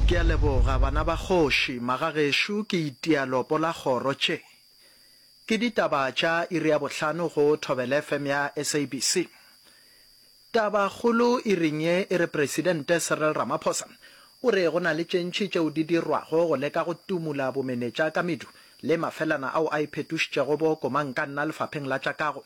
Ke a leboga, bana ba kgoši. Magagešo, ke itia lopo la kgoro tše. Ke ditaba tša iri ya bohlano go Thobela FM ya SABC. Taba kgolo iring ye e re Presidente Cyril Ramaphosa o re go na le tše ntši tšeo di dirwago go leka go tumula bomenetša ka medu le mafelana ao a iphetošitšego bo komankanna lefapheng la tša kago.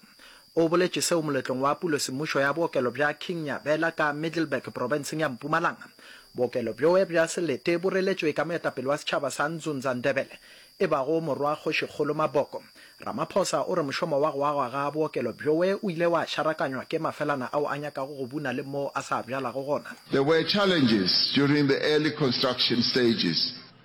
O boletše seo moletlong wa pulo semmušo ya bookelo bja King Nyabela ka Middelburg profenseng ya Mpumalanga. Bookelo bjoe bja selete bo reletšwe ka moetapele wa setšhaba sa Nzunza Ndebele e bago Morwa Kgošikgolo Maboko. Ramaphosa o re mošomo wa go agwa ga bookelo bjoe o ile wa šarakanywa ke mafelana ao a nyakago go buna le moo a sa bjalago gona. There were challenges during the early construction stages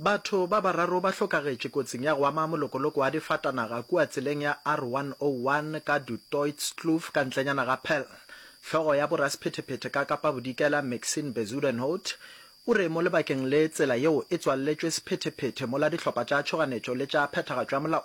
Batho ba bararo ba hlokagetše kotsing ya go ama molokoloko wa difatanaga kua tseleng ya R101 ka Du Toitskloof ka ntlenyana ga Paarl. Hlogo ya borasephetephete ka Kapa Bodikela Maxine Bezuidenhout o re mo lebakeng le tsela yeo e tswalletšwe sephetephete mola dihlopha tša tšhoganetšo le tša phethagatšo ya molao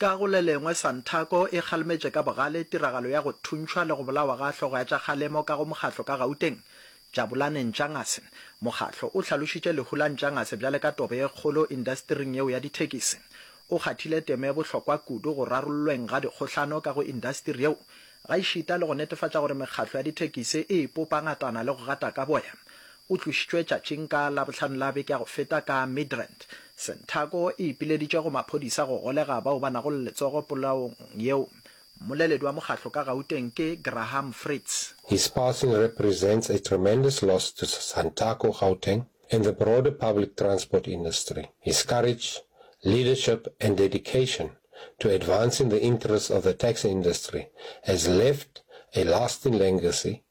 Ka go le lengwe, Santaco e kgalemetše ka bogale tiragalo ya go thuntšhwa le go bolawa ga hlogo ya tša kgalemo ka go mokgatlo ka Gauteng, Jabulani Ntshangase. Mokgatlo o hlalošitše lehu la Ntshangase bjale ka tobe ye kgolo indastering yeo ya dithekisi. O kgathile temo e bohlokwa kudu go rarollweng ga dikgohlano ka go indastiri yeo, gaešita le go netefatša gore mekgatlo ya dithekisi e ipopa ngatana le go gata ka boya. O tlošitšwe tšatšing ka Labohlano la beke ya go feta ka Midrand. Santaco e ipileditše go maphodisa go golega bao ba nago le letsogo polaong yeo. Mmoleledi wa mokgatlo ka Gauteng ke Graham Fritz. His passing represents a tremendous loss to Santaco Gauteng and the broader public transport industry. His courage, leadership and dedication to advancing the interests of the taxi industry has left a lasting legacy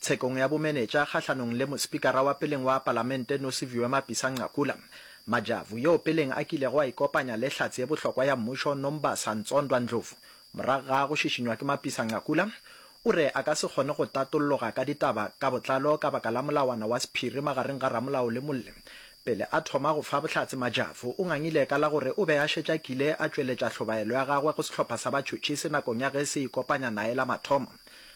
Tshekong ya bomenetša kgahlanong le Mospikara wa peleng wa Palamente Nosiviwe Mapisa-Nqakula, Majavu, yoo peleng a kilego a ikopanya le hlatse ye bohlokwa ya mmušo Nombasa Ntsondwa Ndlovu morago ga go šišinywa ke Mapisa-Nqakula, o re a ka se kgone go tatolloga ka ditaba ka botlalo ka baka la molawana wa sephiri magareng ga ramolao le molli. Pele a thoma go fa bohlatse Majavu o ngangile ka la gore o be a šetše a kile a tšweletša hlobaelo ya gagwe go sehlopha sa batšhotšhisi nakong ya ge se ikopanya nae la mathomo.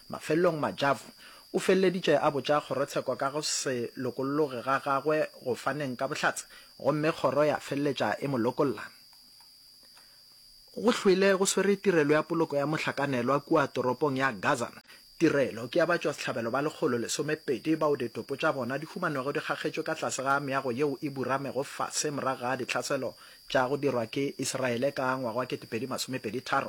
Mafelelong Majavu o feleleditše a botša kgorotsheko ka go se lokolloge ga gagwe go faneng ka bohlatse gomme kgoro ya feleletša e mo lokolla. Go hwile go swere tirelo ya poloko ya mohlakanelwa kua toropong ya Gaza. Tirelo ke ya batšwasehlabelo ba lekgolo lesomepedi bao ditopo tša bona di humanego di kgakgetšwe ka tlase ga meago yeo e buramego fase morago ga dihlaselo tša go dirwa ke Isiraele ka ngwaga wa ketepedi masomepedi tharo.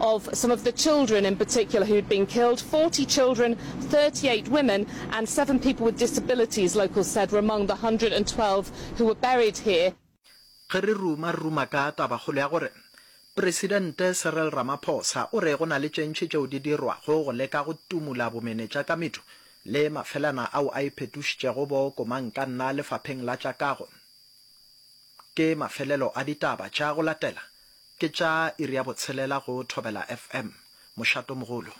of some of the children in particular who had been killed. 40 children, 38 women, and seven people with disabilities, locals said, were among the 112 who were buried here. Ge re ruma, re ruma ka tabakgolo ya gore Presidente Cyril Ramaphosa o re go na le tše ntši tšeo di dirwago go leka go tumola bomenetša ka medu le mafelana ao a iphetošitšego bo komankanna lefapheng la tša kago. Ke mafelelo a ditaba tša go latela Ke tša iri ya botshelela go Thobela FM, Mošatomogolo.